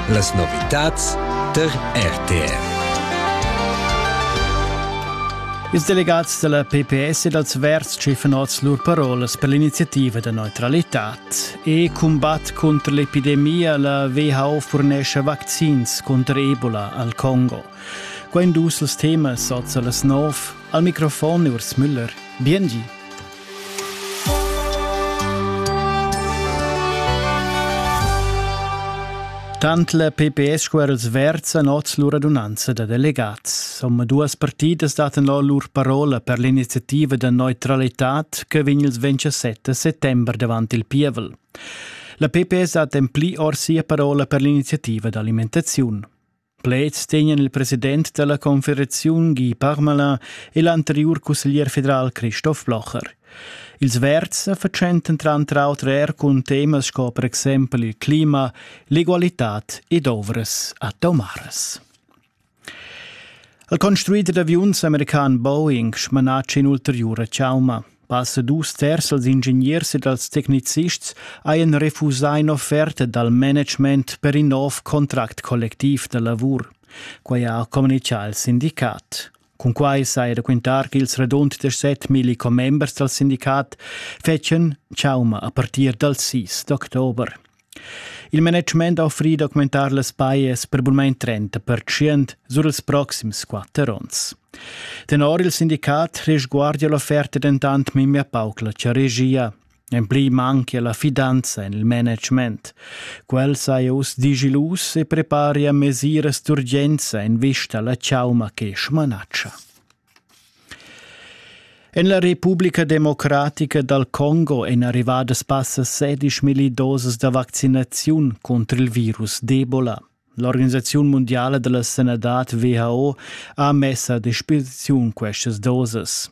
Las novitads tar RTR. Ils delegats della PPS e dals Verds schiffen oz lur parolas per l'iniziativa da neutralitad. E combatt contro l'epidemia la WHO furnesce vaccins contro Ebola al Congo. Quain dus els temas oz a las nov. Al microfon Urs Müller. Biengi. Tant la PPS sco er els verds han oz lur radunanza da delegats. Om duas partidas daten lo lur parola per l'iniziativa da neutralitad che vegn il 27 settembre davant il pievel. La PPS dat en pli or sia parola per l'iniziativa d'alimentazione. Pleds tegnan il president dalla confederaziun Guy Parmelin e l'anteriur cusseglier federal Christoph Blocher. Ils verds sa fatschentan tranter auter er cun temas sco per exempel il clima, l'egualitad ed ovras atomaras. El construider d'aviuns american Boeing smanatsch in'ulteriura chauma. Passa dus terz dals ingegners e dals tecnicists hajan refusà in'offerta dal management per in nov contract collectiv da lavur. Quai ha communitgà il sindicat. Cun quai saja da quintar ch'ils radund 17.000 commembers dal sindicat fetschan chauma a partir dal 6 d'october. Il management ha offrì d'augmentar las pajas per bunmain 30 pertschient sur ils proxims quatter onns. Tenor il sindicat resguardia l'offerta dentant memia pauc la regia. En pli manchia la fidanza en il management. Quel saja uss digilus e preparia mesiras d'urgenza en vista alla chauma che smanatscha. En la Republica Democratica dal Congo èn arrivadas passa 16 milli dosas da vaccinaziun contro il virus d'Ebola. L'organisaziun mondiala della sanadad WHO ha messa a disposiziun questas dosas.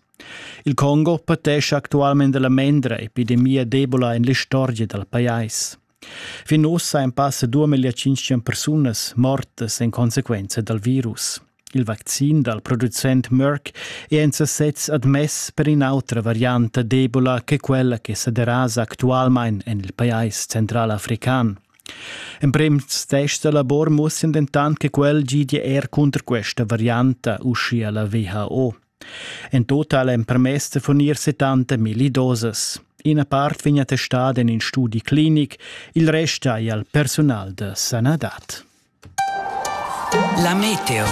Il Congo patesce attualmente la mendra epidemia d'Ebola en l'istorgia dal pajais. Fin ussa ein passa duamillia tschintg persunas mortas en consequenza dal virus. Il vaccin dal producent Merck è en sasez admess per in'autra varianta d'Ebola che quella che sa derasa actualmain en il pajais centralafrican. Emprems tests da labor mussen dentant che quel gidia er cunter questa varianta, uschia la WHO. En total empermess da furnir 70 milli dosas. Ina part vegn attestada en in studi clinic, il rest hai al personal da sanadad. La meteo.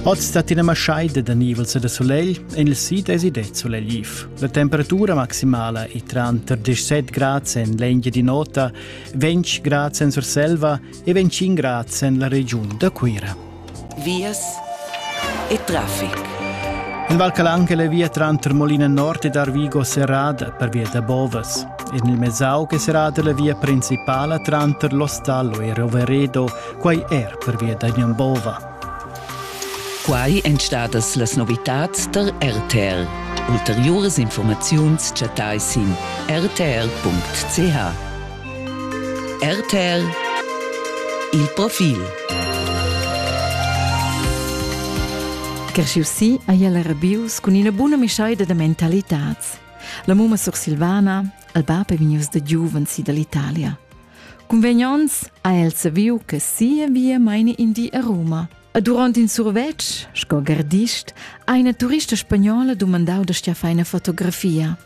Oz stat ina maschaida da nivels da solegl en il sid e sid solegliv. La temperatura maximala è tranter 17 grads en l'Engia di Nota, 20 grads en Surselva e 25 grads en la regiun da Cuira. vias e traffic. In val calan che le via tranter Molina Nord ed Arvigo serrada per via da Bovas. E nel Mesau che serrada la via principala tranter L'Ostallo e Roveredo, quai er per via da Bova. Quai èn stadas las novitads tar RTR. Ulteriuras informaziuns chattai sin rtr.ch. RTL Il profil Cresciu si a el rabius cun ina buna mischaida da mentalitats. La mumma sursilvana, il bab è vegnius da giuven si dall'Italia. Convegnons ha el saviu che sia via maini in di a Roma. E durant in survetsch, sco gardist, ha una turista spagnola dumandau da stia fai una fotografia.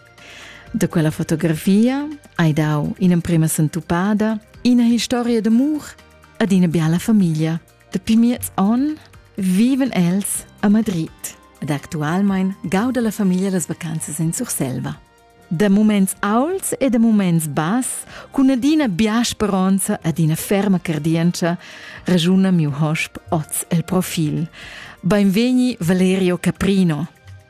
Da quella fotografia hai dau in'emprema sentupada, ina historia d'amur ed ina biala famiglia. Dapi miez onn viven els a Madrid ed actualmein gauda la famiglia las vacanzas in Surselva. Da muments auls e da muments bass, cun adina bia speronza ed ina ferma cardientscha, ragiuna miu hosp oz el profil. Beinvegni Valerio Caprino.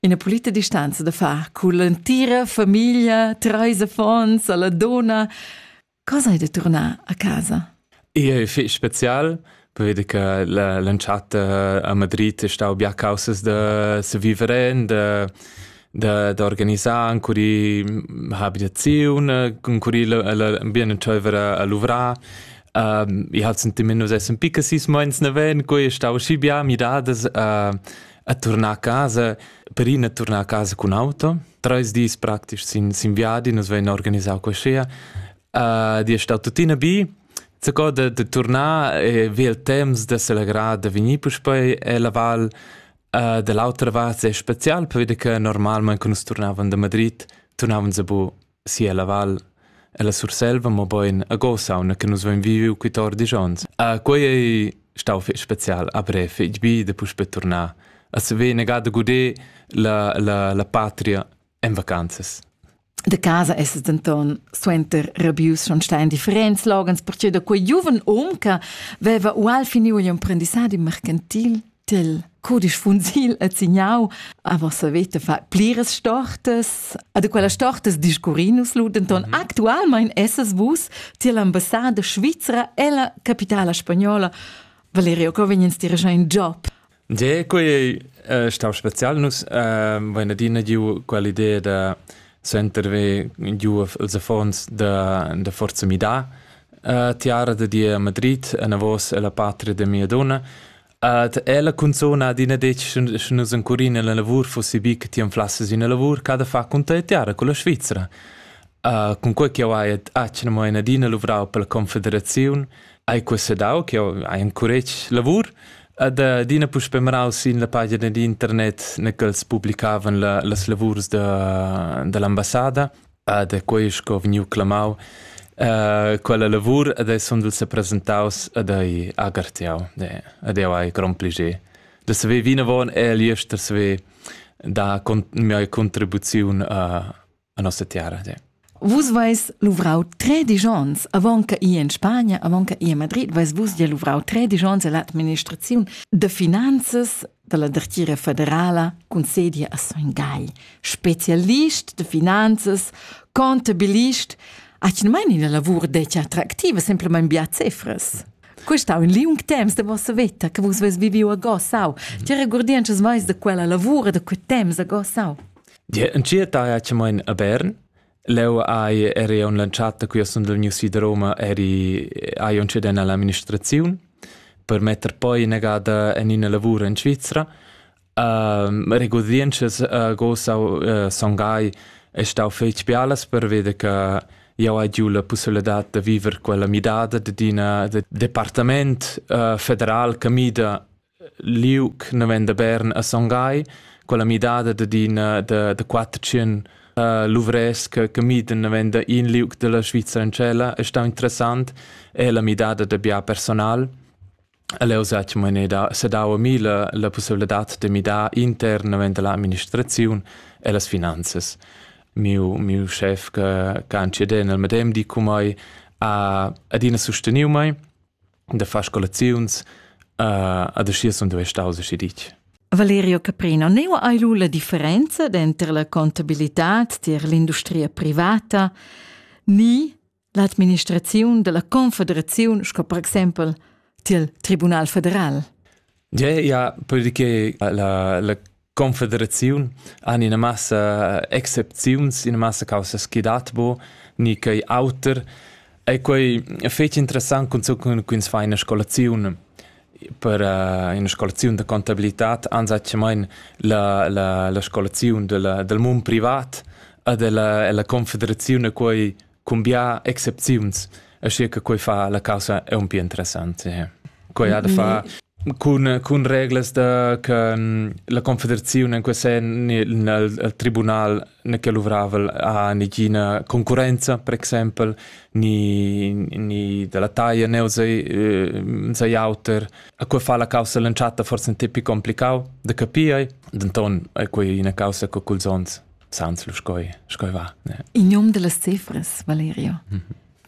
Ina pulita distanza da far cun l'entira famiglia, treis affons, alla donna. Cosa hai da tornar a casa? E fich special, vedi che l'entschatta a Madrid è stau bia causas da se vivere, da da, da organizar ancora habitazione, ancora l'ambient c'aveva a luvrar. Um, ich hatte sentiment, dass es ein bisschen meins nicht wenn, quei stau schi bia midadas uh, a turnar a casa, per ina turnar a casa cun auto. Treis dis praktisch sin, sin viadi, nus vein organisau quaschea. Uh, di è stato tuttina bi, Zaco de, de tornar e vi il temps de celebrar de venir puspei e la val uh, dell'altra vart è special per vede che normalmente quando tornavan da Madrid tornavan se bu Sia la val. Ella Surselva, mobein a Gosauna che nus vein viviu quittor dis onns. Ah, quei ei stau fetg special a brev, fetg bi da puspè turnar. As vegn negada guder la, la, la patria en vacanzas. De casa es es denton suenter rabius schon stai in differents loghens, perciò da quei giuven um che veva ual finiu igl imprendissadi mercantil Til codisch funsil et signau aber se vete fa plires stortes ad quella stortes discurrinus lu denton mhm. actualmein esses vus tier l'ambassade svizra e la capitala spagnola Valerio Covignens dirigea in job De quei eh, stau special nus eh, vain adina giu quell'idea da senterve giu els affons da da forza mi da eh, tiara de die a Madrid a navos e la patria de mia donna Ed ella cunzun adina detg sche nus encurin ella lavur fussi bi che ti anflasses ina lavur che ha da far cun tia tiara con la Svizra. Uh, cun quei che jau hai atgna mo in adina luvrau per la Confederaziun, hai quessedau che jau hai encuretg lavur ed adina puspe marau sin la pagina d'internet ne ch'els publicavan la, las lavurs da, dall'ambassada Ed è quei sco vegniu clamau uh, quella lavur ed ei sundel sepresentaus ed ei agartiau. Ed jau hai grond plascher da saver vinavon e agli ester saver dar con mia contribuziun uh, a nossa terra. Ja. Vus vais luvrau tre digions, avant che i in Spagna, avant che i a Madrid, vais vus ja luvrau tre digions all'administraziun de finanzas dalla dertgira federala concedi a Son Gai, specialist de finanzas, contabilist, atgnamain ina lavur detg attractiva, semplamain bia cefras. Quest ha un liung temps de vossa veta che vus ves viviu a Gossau. Ti regurdi ances mais de quella lavura, de quei temps a Gossau? Dir, en cia taia ce mein a Bern, Leu hai eri aunc lantschat da quia sund vegnius vi da Roma eri hai aunc cedent all'administraziun per metter poi inagada en ina lavur en Svizra. regurdientschas gossau sun gai e stau fetg bialas perveda che jau hai giu la pussibilitad da viver quella midada dad ina departament federal che mida liug naven da Bern a Son Gai, quella midada dad ina da, da quatter tschien luvrès che, che miden naven da in liug della Svizzera in tschella è stau interessant è la midada da bia personal. Leu sa che mene da sedau a mi la, la possibilità de midar intern naven dalla amministraziun e las finanzas. Miu, miu chef che, che han cedè nel medem di cu mei ha adina sosteniu mei da far scolaziuns uh, ad aschi sun duei staus aschi ditg. Valerio Caprino, neu hai lu la differenza denter la contabilitad tier l'industria privata ni l'administraziun della confederaziun sco per exempel tiel Tribunal federal. Ja, ja, perché la, la Confederaziun han ina massa excepziuns, ina massa causas chi dat bo, ni quei auter. E quei fetg interessant cun ins fa ina scolaziun per uh, ina scolaziun da contabilitad anzacchamain la, la, la scolaziun della, del mund privat e della, la confederaziun e quei cun bia excepziuns, aschia che quei fa la caussa aunc interessanta. Quei ha da far cun, cun reglas da, che la confederazione in quel sen nel tribunal ne che luvravel ha negina concurenza, per exempel, ni, ni dalla taglia ne sei auter. A quei fa la caussa l'entschatta forse un tipi complicau da capire, denton è quei una causa che culs ons sans lu scoi scoi va ne in nom dellas cefras Valerio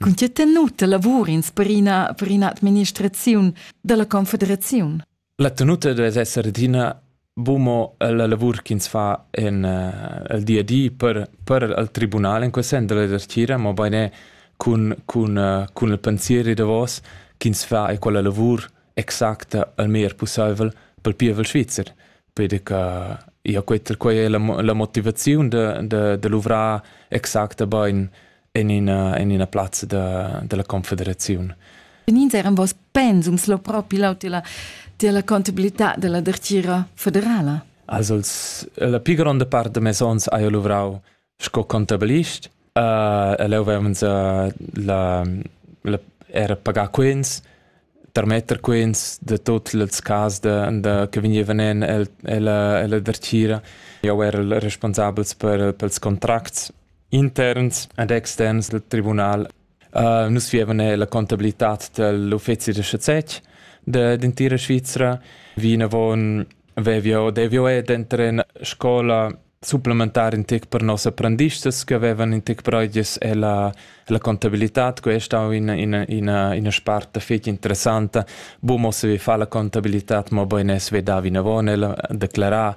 Con tge tenuta lavur ins per ina per ina administraziun dalla confederaziun La tenuta deve esser adina bumo la lavur ch'ins fa en uh, el di a di per per el tribunal in quel sen della dertira mo bene cun cun uh, cun il pensier davos ch'ins fa e quella lavur exacta el meglier pusseivel pel pievel svizzer, peder che ia quetta quai è la, la motivaziun da, da, da luvrar exacta bain en ina, en ina plazza da, della confederazione. Benins eran vos pensums lo propi lau della, della contabilità della dertira federala? Also la più grande parte de mes ons ha io luvrau sco contabilist. Uh, e leu vevans uh, la, la, era pagar quens, tarmetter quens de tot ils cas de, de, che vegnevan en el, ella, ella dertgira. Eu era il responsabels per, pels contracts interns ed externs del tribunal Nus vievan eir la contabilitad dal uffezi da schazetg d'entira Svizra. Vinavon vev'jeu, dev'jeu er denter in scola supplementar in tec per noss apprendistas che avevan in tec breuges e la, la contabilitad, que è stau ina, ina, ina, ina sparta fetg interessanta. Bu, mo se vi fa la contabilitad, mo bein es ve da vinavon el a declarar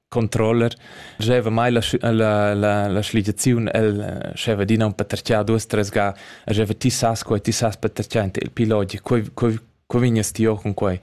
controller scheva mai la, la, la, la schligiaziun el scheva dina un paterchia duas tres ga scheva ti sas quei ti sas paterchia in il piloti quei quei quei vignes ti con quei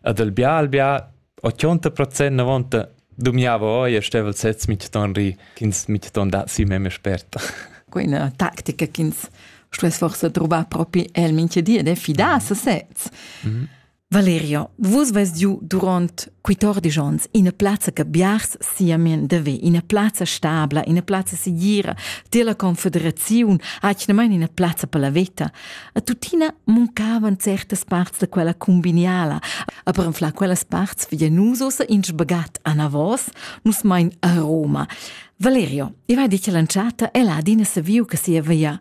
ad al bia al bia 80% na vonta dumiava oi e stevel sez mit ton ri chins mit ton da si meme sperta quella tactica chins stuess forse trovar propi el minche die de fidar a sesez mm -hmm. Valerio, vus veis giu duront quittordisch onns ina plazza che biars siamen deve, ina plazza stabla, ina plazza segira, della confederaziun, atgnamain ina plazza per la veta. A tuttina muncavan certas parts da quella cumbiniala, a per anflar quellas parts via nus ossa in sbagat a Navos, nus mein a Roma. Valerio, io hai dit che l'entschatta è là adina saviu che sia via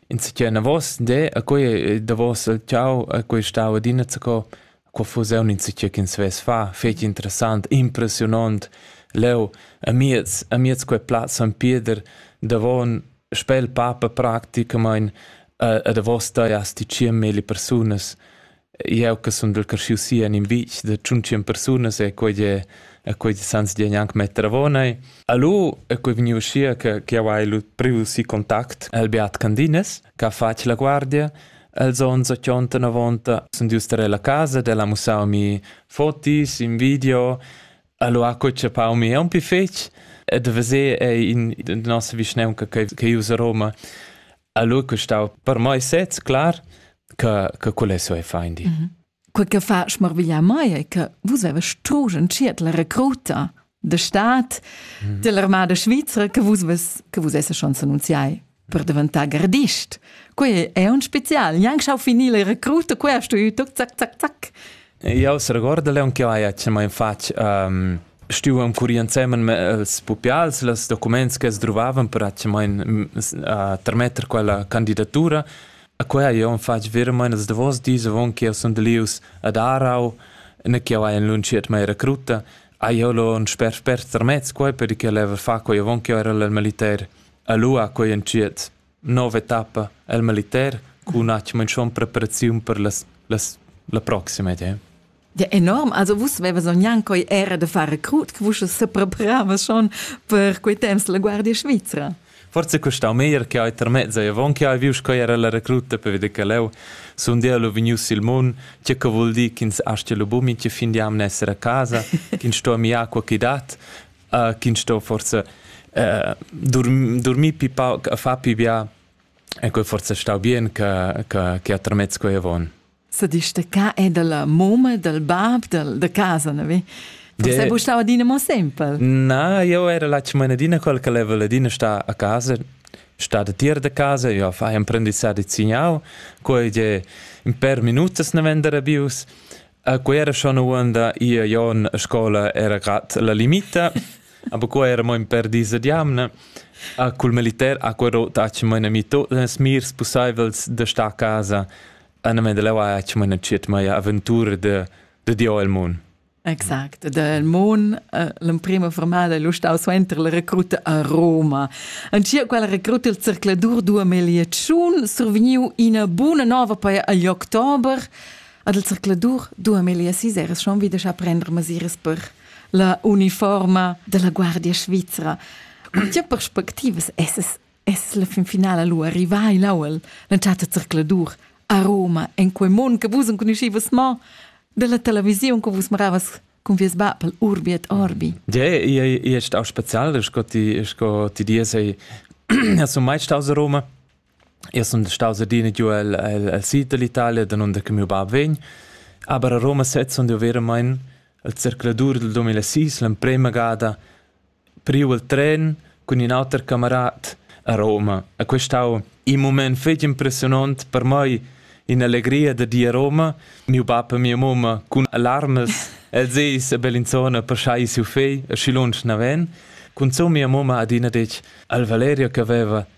insicchia enavos de a quei eh, davos il ciau a quei stau adina zaco qua fuss eu insicchia ch'ins vess fa fetg interessant impressionont leu amiez amiez quei plaz San Pieder davon spel papa practicamain a, a da vosta ja sticiem meli persunas Jeu che sundel creschiu si en in vitg da tschuntsien persunas e quei è e quei sans di gnanc metter avon ei. Allo è quei vegniu uschia che che jau hai lu priu si contact el Beat Candines che ha fatg la guardia Els onns ochonta novonta sun dius tar la casa ed el ha mussau mi fotis in video. Allo ha co chapau mi aunc pi fetg ed veser ei in nossa vischnaunca che che usa Roma. Allora che stau per mai sez clar che che quel è so fein di. Mm -hmm. Quel che fa schmarviglia mai è che vus avest tu sciert la recruta de stat mm -hmm. dell'armada svizra che vus ves che vus esse schon annunziai per diventare gardist. Quei è un spezial, neanche schau finire la recruta, quei hast du io, zac, zac, zac. Jau seregordel aunc ch'jeu hai atgnamein fatg ehm stuevan currir ensemen els pupials los documents che sdruvavan per atgnamein tarmetter quella candidatura. E quei hai jeu fatg veramein ils davos dis avon che jeu sundel ius ad Aarau, nua ch'jeu hai enlunschiert mia recruta. Hai jeu lu en sper spert tarmess quei per che leva far quei avon ch'jeu era el militer a Lua quei entschiet. nova etappa el militer cun atgna schon preparaziun per las, las la proxima idea. Ja enorm, also vus vevas gnanc coi era de far recrut, che vus sepreparavas schon per quei temps la Guardia Svizra. Forse costau meglier che hai termezzo e avon che hai viu coi era la recruta per veder che leu sun dia lu vegnius il mun, che che vul dir ch'ins astia lu bumin che fin di am nesser a casa, ch'ins sto mi acqua chi dat, uh, ch'ins sto forse uh, dorm, dormir pi pauc a far pi bia e quel forse stau bien che che che atramez quei avon. Se dici de ca è della moma del bab del de casa, ne vi? Forse de... bu stau adina mo sempre. Na, io era la cimanadina quel che leva ladina sta a casa sta de tier de casa, io fai un prendissà di zignau, quei je in per minutas ne vendere bius, A quera schon uonda ia jon a scola era gat la limita, aber qua era mo in per dis ad jamna. A cul militer a quero taci mo ina mito nas mirs pussaivels da sta a casa. A na menda leu aci mo ina ciet maia aventura de, de Dio el mun. Exact, del Mon, eh, l'emprima formada è lo stau suenter la recruta a Roma. Ancia quella recruta il cercladur 2008 survegniu ina buna nova per agli october. Ad il zercladur dua melia siseres schon wieder scha prender masiras per la uniforma della guardia svizra. Tge perspectivas esses es la fin finala lu arrivai l'auel l'entschatta zercladur a Roma en quei mund che vus enconuschivas mo della televisiun che vus maravas con vies papel Urbiet Orbi. Ja, ich, ich, ich auch speziell, ich die, ich die diese, hast du meist aus Roma? Io sun staus adina giu el, el, el sid dall'Italia, danunder che miu bab vegn, aber a Roma sez sun jeu veramein il zercladur dal duemilasis, l'emprema gada priu il tren cun in auter camarat a Roma. E quest stau in mument fetg impressionont per mei, in'allegria da dir a Roma. Miu bab e mia mumma cun alarmes, els eis a Bellinzona per schai siu fegl, e schi lunsch naven. Cunzun mia mumma ha adina detg al Valerio che veva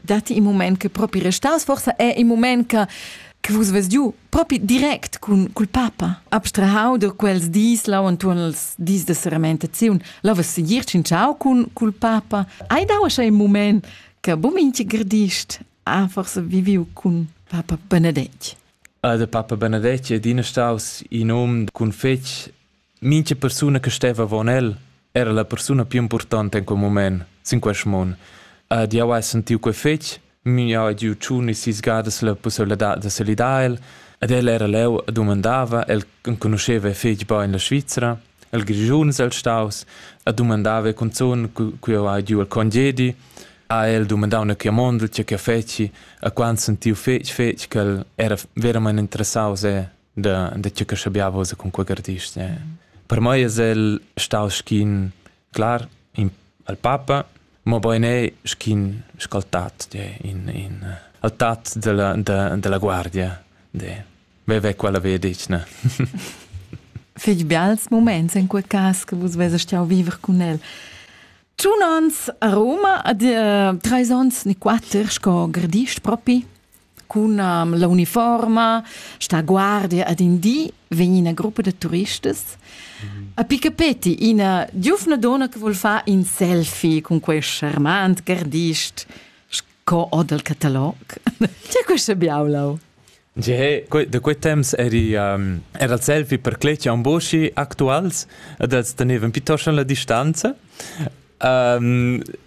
datti in mument che propi restas, forsa è in mument che che vus ves giu propi direct cun cul papa abstrahau da quels dis lau entuorn els dis de seramentaziun la ves segir cinciau cun cul papa hai dau sche in moment che bu minchi gradist ha forse viviu cun papa Benedetg Ah, der Papa Benedetg è din staus in um cun fetg Mincha persuna che steva avon el era la persuna più importanta in quel mument sin quest mund. Ed jau hai sentiu quei fetg, miu ha giu tschun e sis gadas la pusseiladad da salidar el, ed el era leu e dumandava, el enconuscheva fetg bein la Svizra, el Grischuns el staus, e dumandava cunzun, cu jau hai giu el congedi, ha el dumandau una chiamondel, tge che feci, e quando sentiu fetg fetg che el era veramente interessaus e da, da tgeu che schabiava vos con quei artist. Eh. Per mei es el stau schin clar in, al papa, ma bein è schin scaltat in, in eh, altat della, de, della guardia. De. Veve quella vedic, ne? Fig bials moments in quei cas che vus vese stiau viver con el. Tun ans a Roma, ad uh, treis ons ni quatter, sco gradist propi? cun um, la uniforma, sta guardia ad in di, vegn ina gruppa da turistas. Mm. A piccapeti ina giufna donna che vuol far in selfie con quest charmant gardist, sco o dal catalog. C'è questa biaulau? Ge, da quei temps eri, um, era il selfie per cletga un boschi actuals, e das tenevan piuttosto la distanza. Um,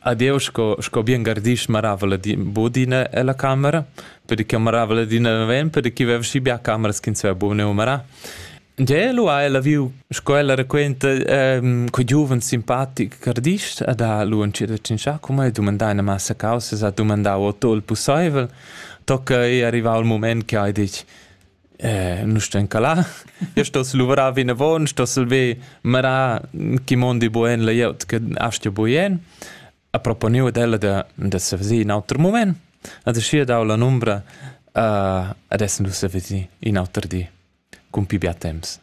Adeu sco, sco bien gardisch maravel ed bod ina ella camera, per che maravel adina naven, per che veva schi bia cameras ch'ins veva buca neu marar. Gie, lu ha ella viu, sco ella raquenta, ehm, quei giuven simpatic gardisch ed ha lu entschiet a tschintschar cun mei, dumandà ina massa causas, ha dumandau otto il pusseivel, tocca ei arrivau il mument che ha detg, nu stan ca là. Io stoss luvrar vinavon, stoss ver marar chi mondi buen la glieud che astgia buien. Ha proponiu ad ella da, da se veser in auter moment. Ad schi dau la numbra uh, adesso nu se veser in auter di, cun pi bia temps.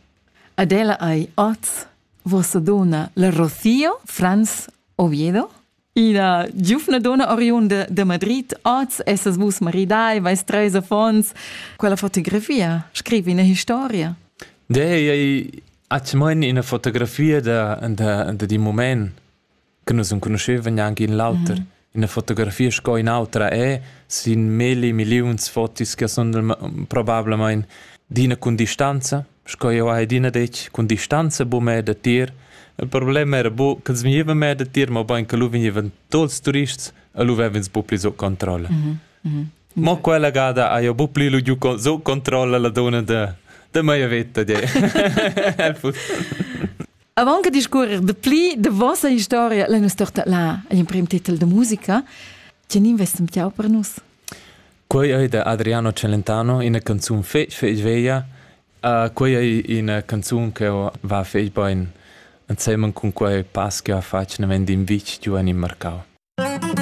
Ad ella ai oz vossa dona la Rocío Franz Oviedo? Ina giuvna donna oriunda de Madrid, oz essas vus maridai, vais treis affons. Quella fotografia, scrivi ina historia. De ei atmon ina fotografia da da da di moment che nus non conoscevan neanche in l'auter. Mm -hmm. Ina fotografia sco in autra è sin milli milliuns fotis che sono probablement d'ina con distanza sco jeu hai adina detg, cun distanza buca meir datier. Il problem era bu ch'els vegnevan meir datier, mobein che lu vegnevan tuts ils turists e lu vev'ins bu pli sut controlla. Mhm, mhm. Mo quella gada ha jeu bu pli lu giu con- sut controlla la donna da, da mia veta di. El fussal. Avant che discorrer de pli de vossa historia, la nostra là, agl emprem titel de musica, tien investem jau per nus? Quei ei da Adriano Celentano ina canzun fetg fetg veglia. Uh, quei ei ina canzun che va fetg bein. Ensemen cun quei pass che ha fatg naven d'in vitg giu en il marcau.